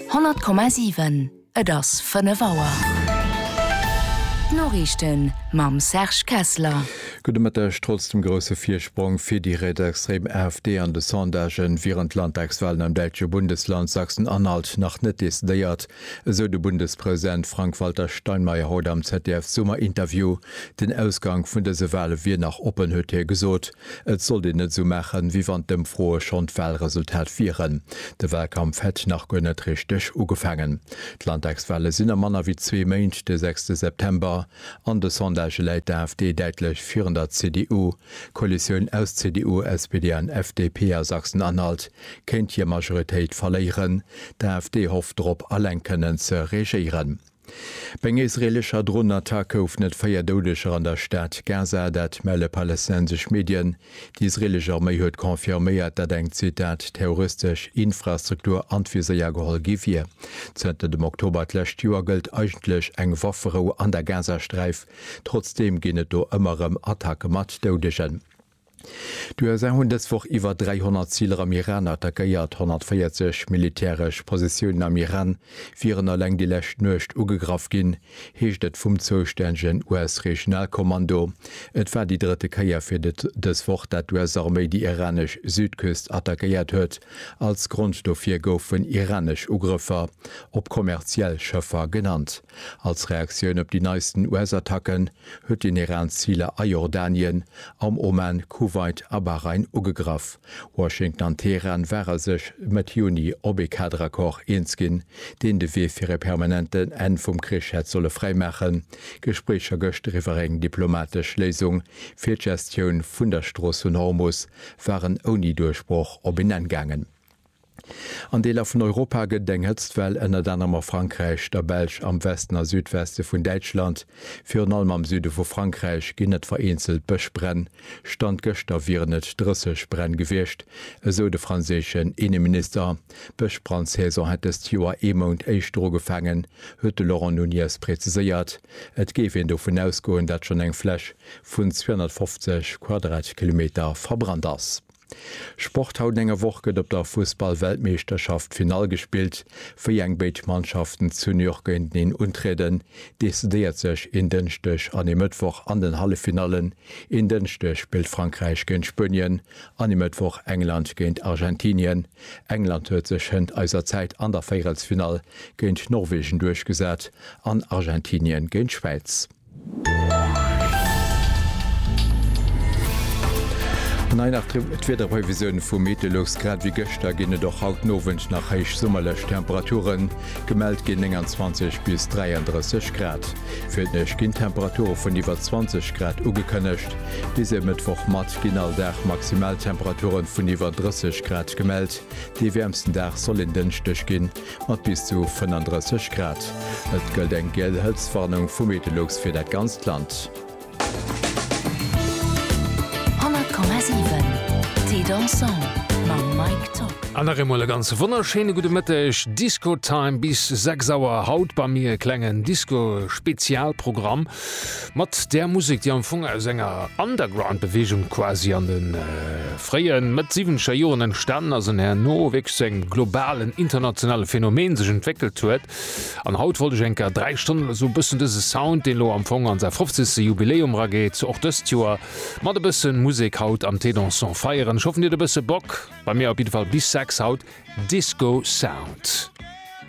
100,7 Et ass 5 Auer. D'Noriichten mam Serge Kessler. Gudde Mëtteg. Trotz dem grousse Virsprong fir déi rietsextrem AfD an de Sondagen, wieren d'Landtagswalen am däitsche Bundesland Sachsen-Anhalt nach net decidéiert, esou de Bundespresident Frank-Walter Steinmeier haut am ZDF-Summer-Interview. Den Ausgank vun dëse Wale wier nach oppen, huet hie gesot. Et sollt een net esou maachen, wéi wann d'Ëmfroe schonn d'Walresultat wieren. De Walkampf hätt nach guer net richteg ugefaangen. D'Landtagswale sinn a manner wéi zwee Méint, de sechste September. An de Sondagë läit d'AfD däitlech virun der CDU. D'Koalitioun aus CDU, SPD an FDP a Sachsen-Anhalt kéint hir Majoritéit verléieren. D'AfD hofft drop, alleng kënnen ze regéieren. Bei enger israeelescher Dronenattack goufen et véier Doudeger an der Stad Gaza, dat melle palästinensesch Medien. Déi israeelesch Arméi huet confirméiert, datt eng, Zitat, terroristesch Infrastruktur an d'Viséier geholl gi wier. Zënter dem Oktober d'lescht Joer gëllt eigentlech eng Wafferou an der Gazasträif. Trotzdeem ginn et do ëmmer erëm Attacke mat Doudegen. D'USA hunn dës Woch iwwer 300 Ziler am Iran attackéiert. 140 militäresch Positiounen am Iran wieren eleng déi lescht Nuecht ugegraff ginn, heescht et vum zoustännegen US-Regionalkommando. Et war déi drëtte Kéier fir dës Woch, dat d'US-Arméi déi iranesch Südküst attackéiert huet. Als Grond dofir goufen iranesch Ugrëffer op kommerziell Schëffer genannt. Als Reaktioun op déi neisten US-Attacken, huet den Iran Ziler a Jordanien, am Oman, Kuwait a Bahrain ugegraff. Washington an Teheran ware sech Mëtt Juni op ee Kaderaccord eens ginn, deen de Wee fir e permanenten Enn vum Krich hätt solle fräimaachen. Gespréicher gëscht riwwer eng diplomatesch Léisung fir d'Gestioun vun der Strooss vun Hormus waren ouni Duerchbroch op een Enn gaangen. An Deeler vun Europa gëtt et eng Hëtztwell, ënnert anerem a Frankräich, der Belsch, am Westen a Südweste vun Däitschland. Virun allem am Süde vu Frankräich ginn et vereenzelt Bëschbränn. Stand gëschter wieren et 30 Bränn gewiescht, esou de franséischen Inneminister. D'Bëschbrandsaison hätt dëst Joer ee Mount éischter ugefaangen, huet de Laurent Nunez präziséiert. Et géif een dovun ausgoen, datt schonn eng Fläch vun 250 Quadratkilometer verbrannt ass. Sport, Haut enger Woch gëtt op der Fussballweltmeeschterschaft d'Finall gespillt. Wéi eng béid Mannschaften zu New York géinteneen untrieden, decidéiert sech een Dënschdeg an ee Mëttwoch an den Halleffinallen. Een Dënschdeg spillt Frankräich géint Spuenien an e Mëttwoch England géint Argentinien. England huet sech hënt eiser Zäit an der Véierelsfinall géint Norwegen duerchgesat an Argentinien géint d'Schwäiz. An hei nach d'Wiederprévisioun vu Meteolux. Grad ewéi gëschter ginn et och haut den Owend nach héich summerlech Temperaturen. Gemellt ginn 29 bis 33 Grad. Fir d'Nuecht ginn Temperature vun iwwer 20 Grad ugekënnegt. Bis e Mëttwochmatt ginn all Dag Maximaltemperature vun iwwer 30 Grad gemellt. Dee wäermsten Dag soll en Dënschdeg ginn. Mat bis zu 35 Grad. Et gëllt eng giel Hëtztwarnung vu Meteolux fir dat ganzt Land. An nach eemol e ganz wonnerschéine gudde Mëtteg. Disco-Time bis 6 Auer. Haut bei mir e klengen Disco-Spezialprogramm. Mat där Musek, déi am Fong aus enger Underground-Beweegung quasi an de fréie Mëtt-Siwwenzeger Joren entstanen ass an herno wierklech zu engem globalen, internationale Phänomen sech entwéckelt huet. An haut wollt ech eng Kéier dräi Stonnen oder esou e bëssen dëse Sound, deen elo am Fong an säi fofzegste Jubiläum erageet, och dëst Joer mat e bësse Musek haut am T-Dansons feieren. Ech hoffen, Dir hutt e bësse Bock. Bei mir op jidde Fall bis 6 haut Disco Sound.